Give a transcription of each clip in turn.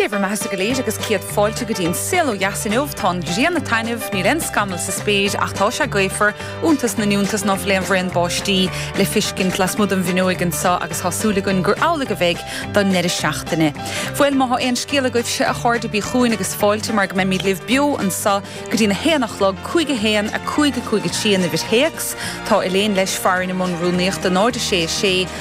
Dé bhur mbeathasa go léir agus céad fáilte go dtí An Saol ó Dheas inniu. Tá an ghrian ag taitneamh, níl aon scamall sa spéir ach tá sé gaofar, iontas na n-iontas ná fuil aon bhraon báistí le feiscint lasmuigh den bhfuinneoig anseo agus tá súil againn gur amhlaidh a bheidh don ndeireadh seachtaine. Bhuel, má tá aon scéal agaibhse, a chairde, bí chugainn agus fáilte mar go mbeimid libh beo anseo go dtí'n a haon a chlog, cúig a haon, a cúig, a cúig a trí an uimhir théacs. Tá Elaine, leis, farainn i mbun rúnaíochta, 0 6 6,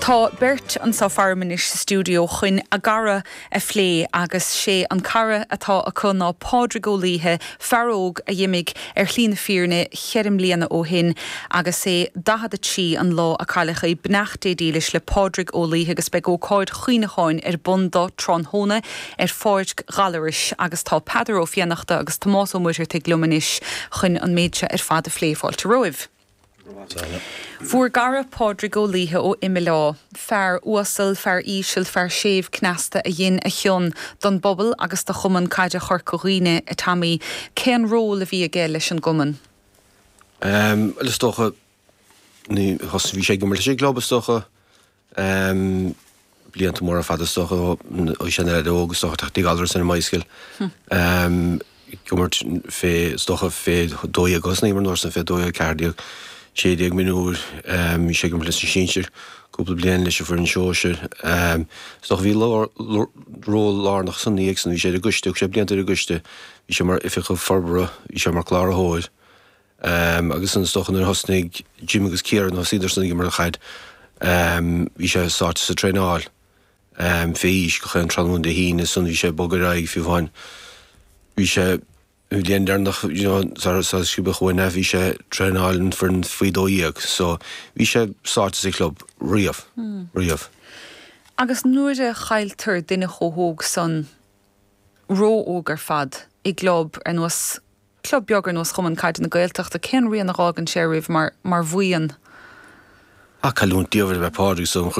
Tá beirt anso faram anois sa stiúideo chuin a gcara a phlé agus 'sé an cara atá acu ná Pádraig Ó Laoithe, fear óg a dh'imigh ar shlí na fírinne cheithre mbliana ó shin agus é 43 an lá a cailleadh é. Beannacht Dé dílis le Pádraig Ó Laoithe agus beidh ócáid chuimhneacháin ar bun dó tráthnóna ar pháirc Ghallarais agus tá Peadar Ó Fionnachta agus Tomás Ó Muircheartaigh liom anois chuin an méid seo ar fad a phlé. Fáilte romhaibh. Bhur gcara Pádraig Ó Laoithe ó Imileá, fear uasal, fear íseal, fear séimh cneasta a dhin a chion don bpobal agus do Chumann Caide Chorca Dhuibhne, A Tommy, cén ról a bhí aige leis an gcumann? Bhuel, is dócha, thosnaigh sé ag imirt leis an gclub, is dócha. Em, blianta móra fada, is dócha, ó sin ar aghaidh, agus is dócha tá Tigh Ghallarus ar an mBycycle, em, ag imirt fé, is dócha fé dó dhéag agus ag imirt an uair san, fé dó dhéag ceathair déag, sé déag mionúir, em, bhí sé ag imirt leis na sinsir cúpla bliain, leis an foireann shóisir. Em, is dócha bhí lár, ról lárnach ansan ina dhiaidh san, bhí sé ar an gcoiste, thug sé blianta ar an gcoiste, bhí sé mar oifigeach forbartha, bhí sé mar cláraitheoir. Agus ansan is dócha nuair a thosnaigh Jim agus Ciara, thosaíodarsan ag imirt caid. Bhí sé sáite sa traenáil fé aois gach aon tráthnóna Dé hAoine ansan bhí sé ag bogadh ar aghaidh fiú amháin. Bhí sé, an bhliain deireanach sara sciobadh uainn é, bhí sé ag traenáil an foireann faoi dó dhéag. So, bhí sé sáite sa chlub riamh, riamh. Agus nuair a chailltear duine chomh hóg san, ró-óg ar fad, i gclub ar nós club beag ar nós Chumann Caide na Gaeltachta, cén rian a dh'fhágann sé oraibh mar bhuíon? Ba cailliúint diamhair a b'ea Pádraig agus,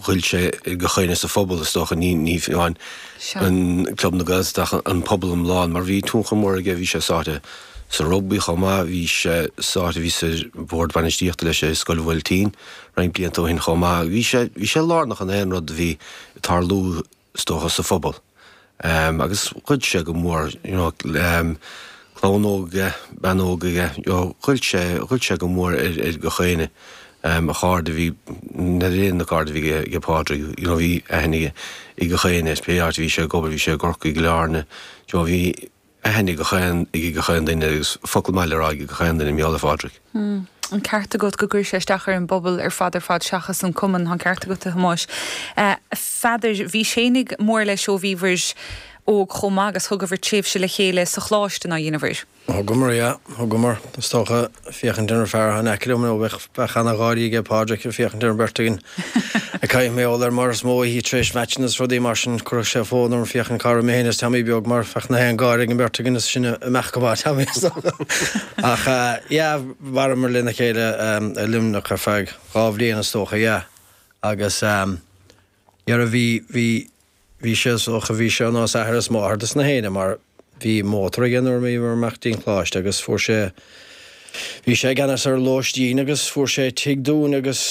ghoill sé ar gach éinne sa phobal is dócha, ní hamháin club na Gaeltachta ach an pobal iomlán mar bhí tionchar mór aige, bhí sé sáite sa rugbaí chomh maith, bhí sé sáite, bhíos ar bhord bainistíochta leis i Scoil Mhaolchéadair roinnt blianta ó shin chomh maith, bhí sé lárnach in aon rud a bhí ag tarlú. is dócha, sa phobal, agus ghoill sé go mór, you know, clann óg aige, bean óg aige, you know, ghoill sé, ghoill sé go mór ar, ar gach éinne. A chairde a bhí, ní lán na cairde a bhí ag Pádraig, you know, bhí aithne aige ar gach éinne, is pé áit a bhí sé ag obair, bhí sé i gCorcaigh, Cill Airne, you know, bhí, aithne ag gach aon ag ag gach aon duine agus focal maith le rá ag ag gach aon duine, mar gheall ar Phádraig. An ceart agat go gcuireann sé isteach ar an bpobal ar fad ar fad seachas an cumann? Tá an ceart agat, a Thomáis. A Pheadair, bhís ana-mhór leis ó bhíobhair óg chomh maith agus thugabhair tréimhse le chéile sa Choláiste, nár dheineabhair? Thugamar, yeah, thugamar. Is dócha. féachaint ar an fear atá in aice liom, bheadh ana-gháirí ag Pádraig ag féachaint ar an bheirt againn. Caithfidh mé a rá leat mar is mó oíche tar éis meaitseanna is rudaí mar sin. Chuirfeadh sé fonn orm féachaint cá raibh mé féin is Teaimí beag, mar bheadh na héinne ag gáirí faoin bheirt againn is sinn ag imeacht go maith, Teaimí is Dónall. Ach yeah, mhaireamar lena chéile i Luimneach ar feadh dhá bhliain is dócha, yeah. Agus. Nuair a bhí, bhí, bhí sé, is dócha, bhí sé ar nós athair is máthair dos na héinne mar bhí mótar aige nuair a bhíomar ag imeacht dtí'n Coláiste agus fuair sé, bhí sé i gceannas ar lóistín agus fuair sé tigh dúinn agus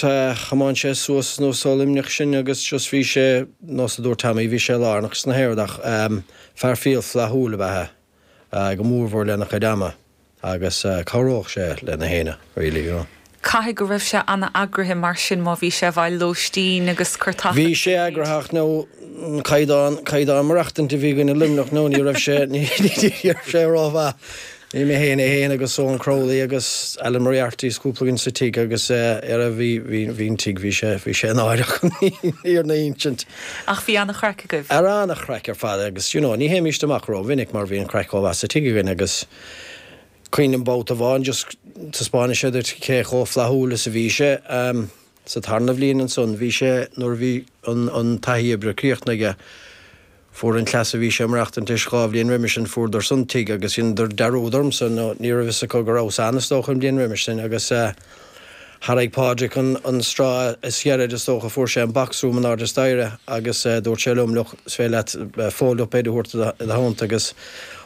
eh, chomáin sé suas go Luimneach sinn agus just bhí sé, nós a dúirt Tommy, bhí sé lárnach sna haon rud ach ehm, fear fial flaithiúil ab ea é. go mórmhór lena chuid ama agus chabhródh sé le na héinne really, you know. Caithfidh go raibh sé ana eagraithe mar sin má bhí sé i bhfeighil lóistín agus carr agaibh. Bhí sé eagraithe ach now caighdeán, caighdeán maireachtaint a bhí againn i Luimneach now ní raibh sé, ní raibh sé ró-mhaith. Bhí mé féin is é féin agus Eoin Crowley agus Alan Moriarty is cúpla againn sa tigh agus eh, era bhí, bhí, bhí an tigh, bhí sé, bhí sé náireach an fhírinne a insint. Ach bhí an-chraic agaibh. Ara an-chraic ar fad agus you know ní théimíst amach ró-mhinic mar bhí an chraic chomh maith sa tigh againn agus cuimhnim babhta amháin just taispeánfadh sé duit cé chomh flaithiúil is a bhí sé ehm sa tarna bhliain ansan bhí sé nuair a bhí an an taithí oibre críochnaithe aige fuair an cleas a bhí sé ag maireachtaint leis dhá bhliain roimis sin fuaireadarsan tigh agus dheineadar dearúd ormsa nó ní raibh fhios acu go rabhas ann is dócha an bhliain roimis sin agus eh Tharraig Pádraig an straw is giorra is dócha. Fuair sé an box room in ard a staighre agus dúirt sé liom, Look, is féidir leat fold-up bed a thabhairt id theannta agus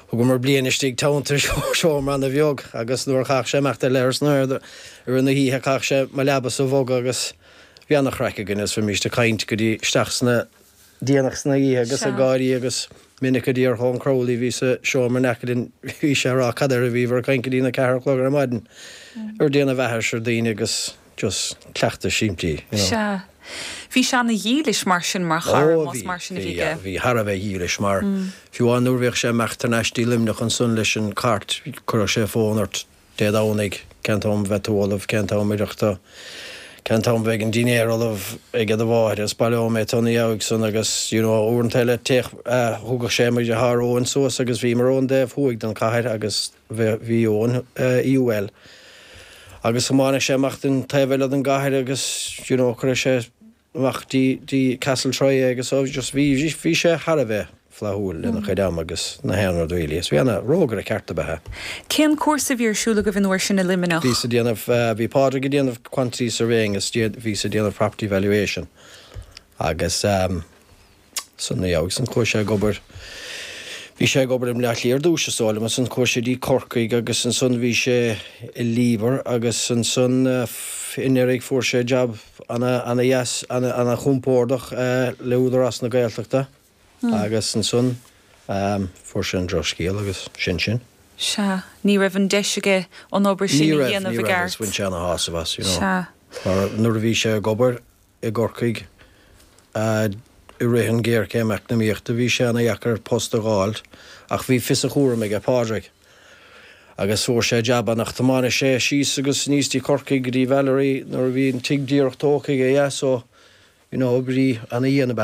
thugamar bliain istigh i dteannta i seomra ana bheag agus nuair a chaith sé imeacht go dtí an leithreas ansan i rith na hoíche chaith sé mo leabasa a bhogadh agus bhí ana-chraic againn agus bhí mise ag caint go dtí isteach sna déanach san oíche agus ag gáirí agus minic a d'iarr Eoin Crowley a bhí sa seomra in aice linn bhí sé ag rá cad air a bhíobhar ag caint go dtí'n a ceathair a chlog ar maidin ag déanamh aithris ar daoine agus just cleachtaí simplí you know. Sea. Bhí sé ana dhílis mar sin mar chara Ó bhí, mar sin a bhí bhí, aige. bhí thar a bheith dílis mar fiú amháin nuair bhíodh sé ag imeacht thar n-ais dtí Luimneach ansan leis an cairt chuireadh sé fón ort Dé Domhnaigh, cén t-am a bheidh tú ullamh, cén t-am a oirfeadh duit, cén t-am a bheidh an dinnéar ullamh ag do mháthair, is baileoidh mé tú ina dhiaidh san agus, you know, uaireanta eile théadh, thugadh sé mo dheartháir Eoin suas agus bhíomar ar an dtaobh thuaidh den chathair agus bhí Eoin i UL agus thiomáineadh sé amach dtí'n taobh eile den gcathair agus, you know, chuireadh sé amach go dtí Castletroy agus so just bhí, bhí sé thar a bheith flaithiúil lena chuid ama agus na haon rud really agus bhí ana, rógaire ceart ab ea é. Cén cúrsa a bhí ar siúl agaibh an uair sin i Luimneach? Bhíos a' déanamh, bhí Pádraig a' déanamh quantity surveying is bhíos-sa a' déanamh property valuation agus. San Mhí agus ansan chuaigh sé ag obair. Bhí sé ag obair i mBleá Cliath ar dtús, is dóigh liom, ansan chuaigh sé go dtí Corcaigh agus ansan bhí sé i Liebherr agus ansan anuraidh fuair sé jab ana, ana dheas, ana, ana chompordach le Údarás na Gaeltachta agus ansan fuair sé an drochscéal agus sin sin. Sea. Ní raibh an deis aige an obair sin a dhéanamh i gceart. Ní raibh, ní raibh agus bhain sé ana shásamh as, you know. Sea. Mar nuair a bhí sé ag obair i gCorcaigh. I rith an ghéarchéim eacnamaíochta bhí sé ana dheacair post a dh'fháilt ach bhí fios a chúraim aige Pádraig agus fuair sé jab ann ach thiomáineadh sé síos agus aníos go dtí Corcaigh go dtí Valerie nuair a bhí an tigh díreach tógtha aige, yeah, so, you know, bhí ana dhian ab ea é.